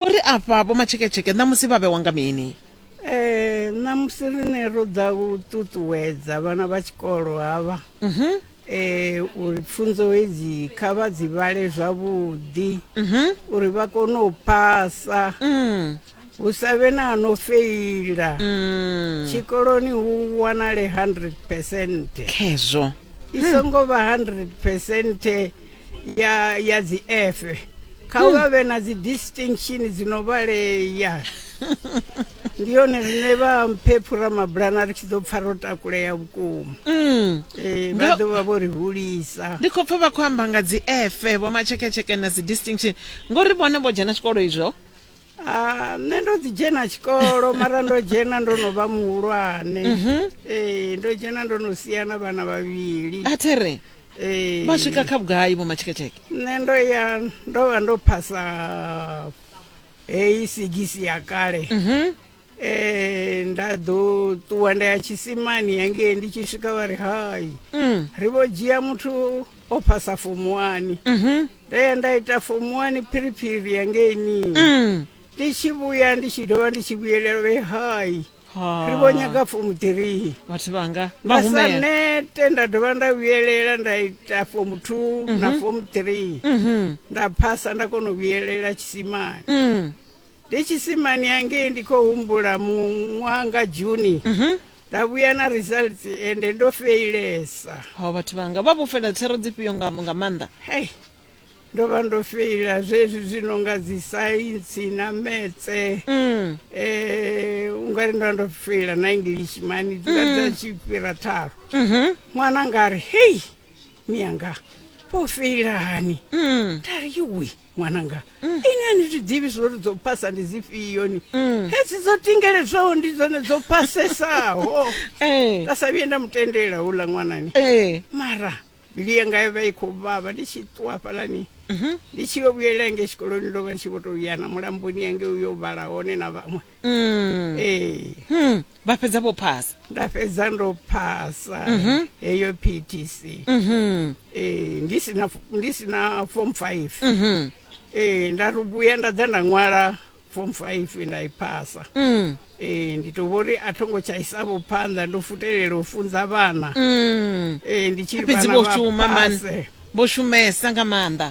uri afha vho matsheketsheke ṋamusi vha vhewa nga mini Eh, ṋamusi rine ro ḓa u ṱuṱuwedza vhana vha tshikolo havha Mhm. eh, uri pfunzo hedzi kha vha dzi vhale zwavhuḓi Mhm. uri vha kone u phasa Mm. hu sa vhe na no feila Mm. tshikoloni hu wanale 100 percent khezwo i songo vha 100 percent ya ya dzi efe kha hmm. vha vhe na dzi distinction dzi no vhalea ndi yone rine vha mphephura mabulana ri tshi ḓo pfa ro takulea vhukuma mm. eh, vha ḓo vha vho ri hulisa ndi khou pfa vha khou amba nga dzi efe vho matsheketsheke na dzi distinction ngori vhone vho dzhena tshikolo izwo Ah, nṋe ndo ḓi dzhena tshikolo mara ndo dzhena ndo no vha muhulwane mhm. ee ndo dzhena ndo no sia na vhana vhavhili a there ee vha swika kha vhugai vho matsheketsheke nṋe ndo ya ndo vha ndo phasa heyi sigisi ya kale mhm. Eh, nda ḓo ṱuwa nda ya tshisimani hangei ndi tshi swika vha ri hai mm. ri vho dzhia muthu o phasa fomu wani mhm. nda ya nda ita fomu wani phiriphiri hangeini mm. ndi tshi vhuya ndi tshi dovha ndi tshi vhuyelela vhe hai ri vho nyaga fomu three vhathu vhanga vha sa nete nda dovha nda vhuyelela nda ita fomu two na mhm. fomu three mhm. nda phasa nda kona u vhuyelela tshisimani mm. ndi tshisimani hangei ndi khou humbula muṅwaha nga juni nda vhuya na results ende ndo feilesa ho vhathu vhanga vha vhofhela thero dzifhio nga nga maanḓa hei ndo vha ndo feila zwezwi zwi no nga dzi saintsi na metse Mm. eh ungari ndo vha ndo feila na english mani dzula dza tshi fhira tharo Mhm. ṅwana nga ri hei miyanga vho feilani Mm. nda ri yuwi ṅwananga mm. inga ni zwi ḓivhi zwo ri dzo phasa ndi dzifhio ni mm. hedzi dzo tingeledzwaho ndi dzone dzo phasesaho eh. nda sa vhuye nda mu tendela hula ṅwanani eh. mara mbilu yanga yo vha i khou vhavha ndi tshi ṱuwa fhalani mhm. ndi tshi yo vhuyela yange tshikoloni ndo vha ndi tshi vho tou ya na mulamboni yange u yo vhala hone na vhaṅwe Mm. ee Hmm. vha fhedza vho phasa nda fhedza ndo phasa Mhm. heyo ptc Mhm. ee ndi sina ndi sina form five Mhm. ee nda ri vhuya nda ḓa nda ṅwala form five nda i phasa Mm. ee ndi to vhori a thongo tsha isavho phanḓa ndo futelela u funza vhana Mm. ee ndi tshi ri fhedzi vhana vho vha shuma man phase. vho shumesa nga maanḓa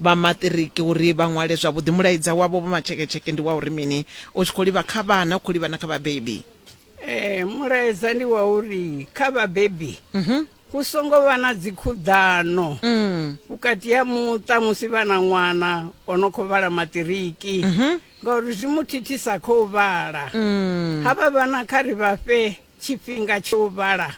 Vha maṱiriki uri vha ṅwale zwavhuḓi mulaedza wavho vho matsheketsheke ndi wa uri mini? U tshi khou livha kha vhana, u khou livha na kha vhabebi. Ee, mulaedza ndi wa uri kha vhabebi hu songo vha na dzikhuḓano vhukati ha muṱa musi vha na ṅwana o no khou vhala maṱiriki ngauri zwi mu thithisa kha u vhala. Havha vhana kha ri vha fhe tshifhinga tsha u vhala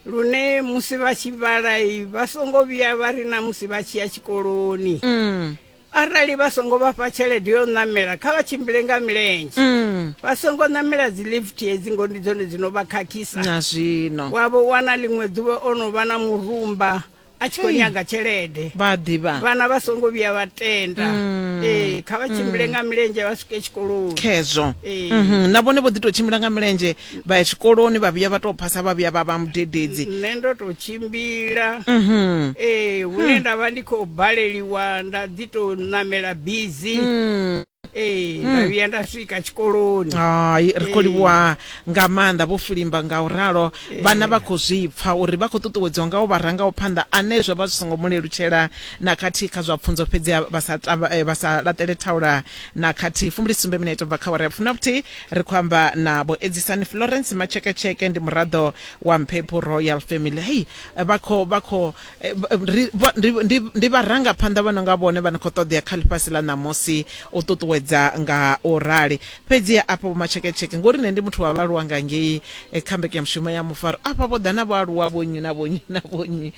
lune musi vha tshi vhala vha songo vhuya vha ri na musi vha tshi ya tshikoloni mm. arali vha songo vha fha tshelede yo ṋamela kha vha tshimbile nga milenzhe mm. vha songo ṋamela dzi lift hedzi ngo ndi dzone dzi no vha khakhisa na zwino wavho wana ḽiṅwe ḓuvha o no vha na murumba a tshi khou nyaga tshelede vha ḓivha vhana vha songo vhuya vha tenda mm. ee kha vha tshimbile mm. nga milenzhe vha swike tshikoloni khezwo mhm. na vhone vho ḓi tou tshimbila nga milenzhe vha ya tshikoloni vha vhuya vha tou phasa vha vhuya vha vha mudededzi nṋe ndo tou tshimbila mhm. ee hune hmm. nda vha ndi khou baleliwa nda ḓi tou ṋamela bizi hmm. ee nda hmm. vhuya nda swika tshikoloni hai ri khou livhuwa nga maanḓa vho fulimba nga u ralo vhana vha khou zwi pfa uri vha khou ṱuṱuwedziwa nga u vha ranga u phanḓa ane zwo vha zwi songo mu lelutshela na khathihi kha zwa pfunzo fhedzi vha sa eh, vha sa laṱele thaula na khathihi fumbili sumbe minete bva kha wara ya funa vhuthihi ri khou amba na vho edzisani florence matsheketsheke ndi muraḓo wa mphephu royal family hei vha khou vha khou Eh, ri, ndi, ndi, ndi vharangaphanḓa vha no nga vhone vha no khou ṱoḓea kha ḽifhasi ḽa ṋamusi u ṱuṱuwedza nga u rali fhedzi afha vhomatsheketsheke ngori nṋe ndi muthu wa vhaaluwa nga ngei eh, kha mbekanyamushumo ya mufaro afha vho ḓa na vhaaluwa vhonyi na vhonyi na vhonyi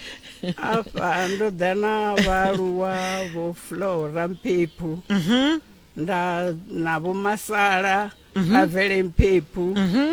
afha ndo ḓa na vhaaluwa vho flora mpephu mhm. nda na vho masala mhm. a vele mpephu mhm.